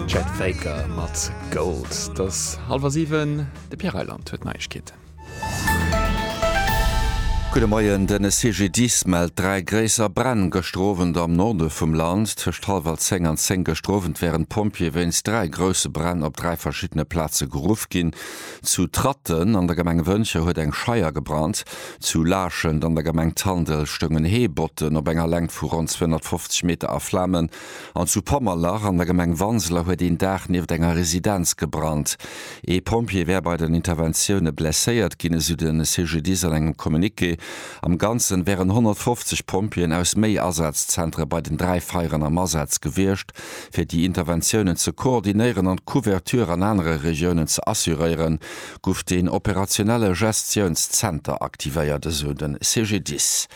Chet Faker mat Gold. Et ass hallwer siwen, de Pierre Reyland huet d'Neiegkeeten. Gudde Moien, Den CGDIS mellt dräi gréisser Bränn gëschter Owend am Norde vum Land. Tëscht hallwer zéng an zéng gëschter Owend wären d'Pompjeeë wéinst dräi grousse Bränn op dräi verschiddene Plaze geruff ginn. Zu Tratten an der Gemeng Wëntger huet eng Scheier gebrannt. Zu Laachent an der Gemeng Tandel stoungen Heebotten op enger Längt vu ronn 250 Meter a Flamen an zu Pommerlach an der Gemeng Wanseler huet een Daach nieft enger Residenz gebrannt. Ee Pompjee wär bei den Interventioune blesséiert ginn, esou de CGDIS an engem Communiqué. Am Ganzen wären 150 Pompjeeën aus méi Asazzentere bei den dräi Feieren am Asaz gewiescht. fir déi Interventiounen ze koordinéieren an d'Couverture an anere Regiounen ze assuréieren, gouf deen operationelle Gestiounszenter aktivéiert, esou de CGDIS.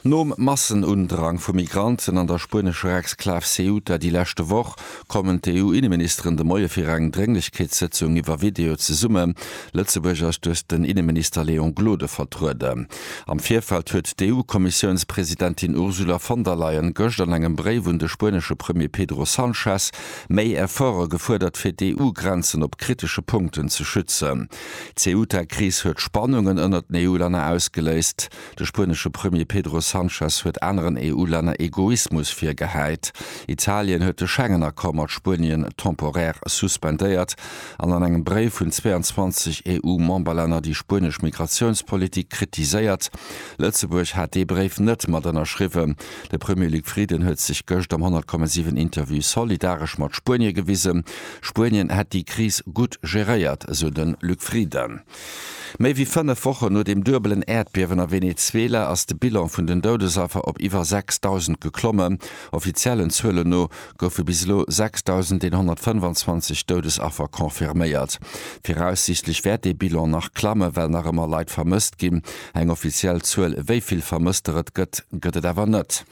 Nom Massenundrang vu Migranten an der spuenescher Exklav Ceuta déi leschte Woch, kommen d'EU-Inneministeren de Moie fir eng Drénglechkeetssëtzung iwwer Video zesumme. Lëtzebuerg ass duerch den Inneminister Léon Gloden vertrueden. Am Virfeld huet d'EU-Kommissiounspresidentin Ursula von der Leyen gëscht an engem Bréif un de spuenesche Premier Pedro Sanchez méi Efforte gefuerdert, fir d'EU-Grenzen op kritesche Punkten ze schützen. D'Ceuta-Kris huet Spannungen ënnert den EU-Länner ausgeléist. De spuenesche Premier Pedro Sanchez huet aneren EU-Länner Egoismus virgehäit. Italien huet de Schengen-Accord mat Spuenien temporär suspendéiert. an an engem Bréif hunn 22 EU-Memberlänner déi spuenesch Migratiounspolitik kritiséiert. Lëtzebuerg hat dee Bréif net mat ënnerschriwwen. De Premier Luc Frieden huet sech gëscht am 100,7 Interview solidaresch mat Spuenie gewisen. Spuenien hätt déi Kris gutt geréiert, esou de Luc Frieden. Méi wéi fënnef Wochen no dem duebelen Äerdbiewen a Venezuela ass de Bilan vun den Doudesaffer op iwwer 6.000 geklommen. Offiziellen Zuelen no goufe bis elo 6.125 Doudesaffer confirméiert. Viraussiichtlech wäert dee Bilan nach klammen, well nach ëmmer Leit vermësst ginn. Eng offiziell Zuel, wéi vill Vermësster et gëtt, gëtt et awer net.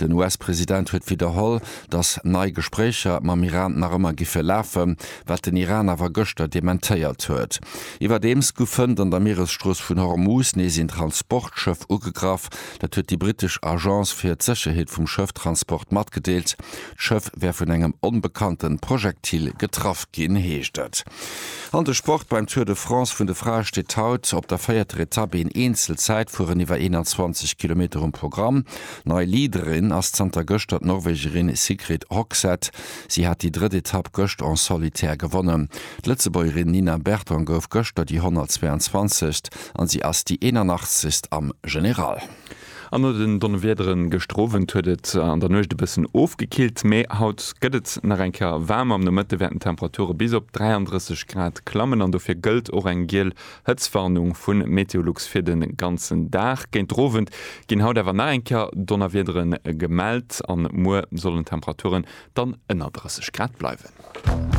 Den US-President huet widderholl, datt nei Gespréicher mam Iran nach ëmmer giffe lafen, wat den Iran awer gëschter dementéiert huet. Iwwerdeems gu fënnt an der Mieresstrooss vun Hormuz nees een Transportschëff ugegraff. Dat huet déi brittesch Agence fir d'Sécherheet vum Schëfftransport matgedeelt. D'Schëff wär vun engem onbekannte Projektil getraff ginn, heescht et. An de Sport, Beim Tour de France vun de Frae steet haut op der véierter Etapp een Eenzel-Zäitfueren iwwer 21 Kilometer um Programm. Nei Leaderin ass zanter gëschter d'Norwegerin Sigrid Hogseth. Si hat déi drëtt Etapp gëscht en solitaire gewonnen. D'Lëtzebuergerin Nina Berton gouf gëschter déi 122. an si ass déi 81. am General. An no den Donnewiedere gëschter Owend huet et an der Nuecht e bëssen ofgekillt, mee haut gëtt et nach eng Kéier waarmer. Am Nomëtte wäerten d'Temperature bis op 33 Grad klammen an dofir gëllt och eng giel Hëtztwarnung vu Meteolux fir de ganzen Dag. Géinter Owend ginn haut awer nach eng Kéier Donnerwiedere gemellt a muer sollen d'Temperature dann ënner 30 Grad bleiwen.